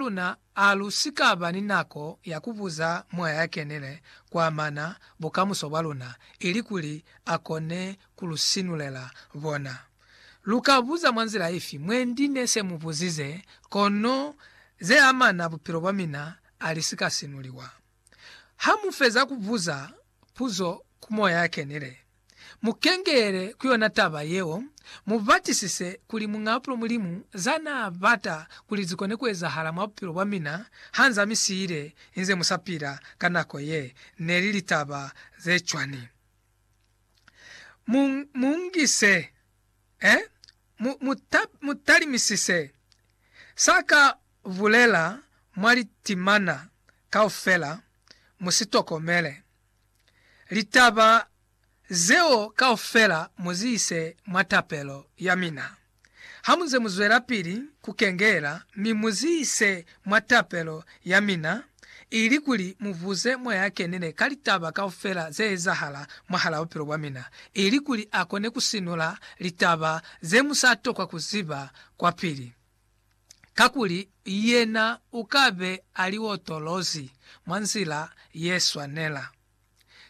luna a lu si ka ba ni nako ya ku buza Mwaya ya Kenile ku amana bukamuso bwa luna, ilikuli a kone ku lu sinulela bona. Lu ka buza mwa nzila ifi, Mwendi ne se mu buzize, kono ze amana bupilo bwa mina a li si ka sinuliwa. Ha mu feza ku buza, Puzo ku Moya ya Kenile. Mu kengelele ku yona taba yeo, mu batisise kuli Muñaapulo Mulimu za naa bata kuli zi kone ku ezahala mwa bupilo bwa mina ha nz'a mi siile inze mu sa pila ka nako ye, ne li litaba ze cwani? Mu, mu ngise, eh? Mu, mu ta, mu talimisise sa ka Bulela mwa litimana kaufela, mu si tokomele. Litaba zeo kaufela mu zi ise mwa tapelo ya mina. Ha mu nze mu zwelapili ku kengeela, mi mu zi ise mwa tapelo ya mina, ilikuli mu buze Moya a Kenile ka litaba kaufela ze ezahala mwahalaa bupilo bwa mina, ilikuli a kone ku sinula litaba ze mu sa tokwa ku ziba kwapili. kakuli yena u ka be a li otolozi mwa nzila ye swanela,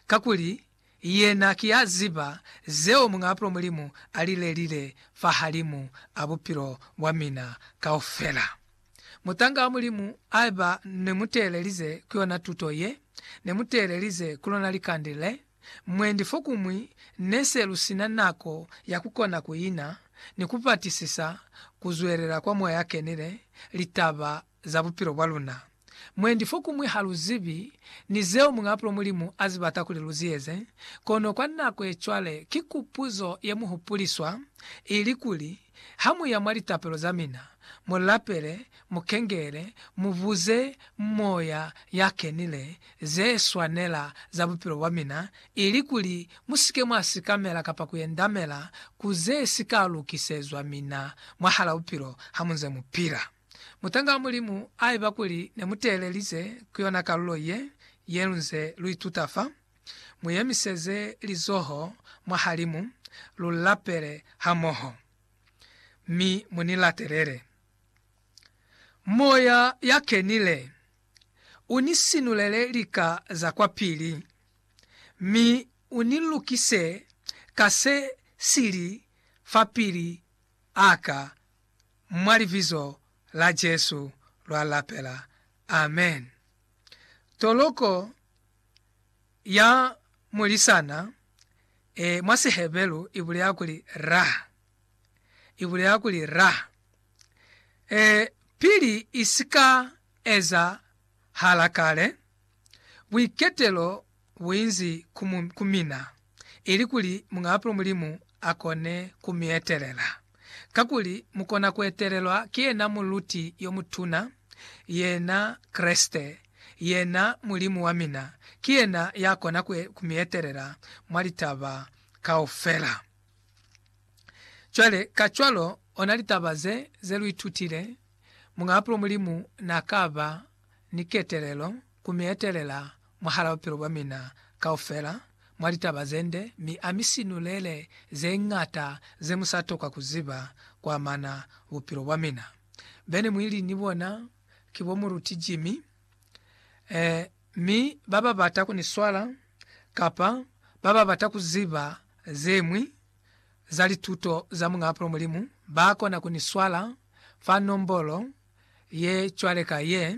kakuli yena ki ya ziba zeo Muñaapulo Mulimu a li lelile fahalimu a bupilo bwa mina kaufela. Mutanga wa Mulimu, haiba ne mu teelelize ku yona tuto ye, ne mu teelelize ku lona likande le, Mwendi fokumwi ne se lu si na nako ya ku kona ku ina ni ku batisisa ku zwelela kwa Moya a Kenile litaba za bupilo bwa luna. Mwendi fokumwi ha lu zibi ni zeo Muñaapulo Mulimu a zi bata kuli lu zi eze, kono kwa nako ye cwale ki kupuzo ye mu hupuliswa ili kuli, Ha mu ya mwa litapelo za mina, mu lapele, mu kengele, mu buze Moya ya Kenile ze swanela za bupilo bwa mina, ili kuli mu si ke mwa sikamela kapa ku endamela ku ze si ka lukisezwa mina mwahala bupilo ha mu nze mu pila. Mutanga wa Mulimu, haiba kuli ne mu teelelize ku yona kalulo ye, ye lu nze lu ituta fa, Mu yemiseze lizoho mwahalimu, lu lapele hamoho, mi mu ni latelele. Moya ya Kenile u ni sinulele lika za kwapili, mi u ni lukise ka se si li fapili a ka, mwa Libizo la Jesu lwa lapela. Amen. Toloko ya mulisana e mwa Siheberu i buleha kuli rah. I buleha kuli rah. E pili i si ka ezahala kale, buiketelo bu inzi ku mina. ili kuli Muñaapulo Mulimu a kone ku mi etelela. Kakuli mu kona ku etelelwa ki yena Muluti yo Mutuna, yena Kreste, yena Mulimu wa mina. Ki yena ya kona ku mi etelela mwa litaba kaufela. Cwale, kacwalo, ona litaba ze, ze lu itutile, Muñaapulo Mulimu na ka ba ni ketelelo Ku mi etelela mwahala bupilo bwa mina kaufela mwa litaba ze nde, mi a mi sinulele ze ñata ze mu sa tokwa ku ziba ku amana bupilo bwa mina. Bene mwi li ni bona ki bo Muruti Jimmy, eh, mi ba ba bata ku ni swala, kapa ba ba bata ku ziba ze ñwi za lituto za Muñaapulo Mulimu, ba kona ku ni swala fa nombolo ye cwale ka ye,